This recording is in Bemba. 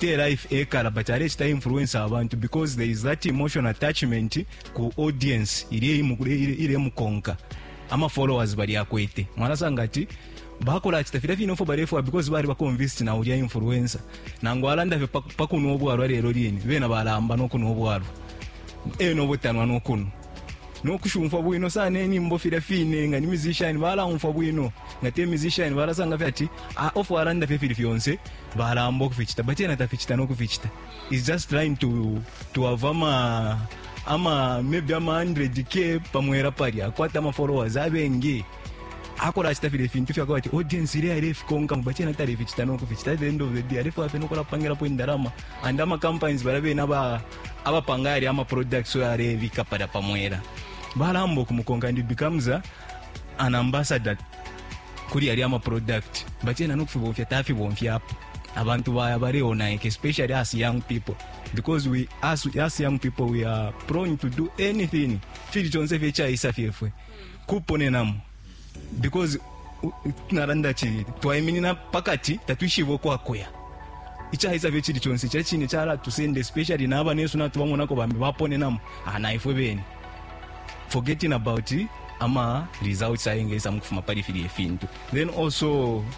te life ekala but alechita influence abantu because there is that emotion attachment ku audience ile ile mukonka ama followers bali akwete mwana sanga ati bakola ati tafira fino fo bare fo because bari bakonvinced na ulia influencer nango alanda fe pakuno obwalwa lero lini bena balamba no kuno obwalwa eno botanwa no kuno no kushumfwa bwino sana inimbo filya fine nga ni musician balaumfwa bwino nga te musician balasanga fye ati ah, ofu alanda fye fili fyonse balamba ukuficita but yena taficita no kuficita is just trying to, to have ama ama maybe ama 100k pamwera palya akwata ama followers abengi akola achita file fintu fyako ati audience ile ile fikonka but yena tali ficita no kuficita at the end of the day alefwa fye no kulapangirapo indalama and ama companies balabe na ba abapanga yali ama products oyo alebika palya pa mwela balamba ukumukonka and becomes a, an ambassador kuli yali ama product but yena nokufibomfya tafibomfyapo abantu baya baleonaika especially as young people because we as, as young people we are prone to do anything fili chonse fye chaisa fyefwe kuponenamo because naranda chi twaiminina pakati tatwishibe ukwakuya ichaisa fye chili chonse cha chine chala tusende especially naba nesu na tubamona ko bambi bapone namu ana ah, ifwe bene forgetting about ama results ayenge isa mukufuma pali fili efintu then also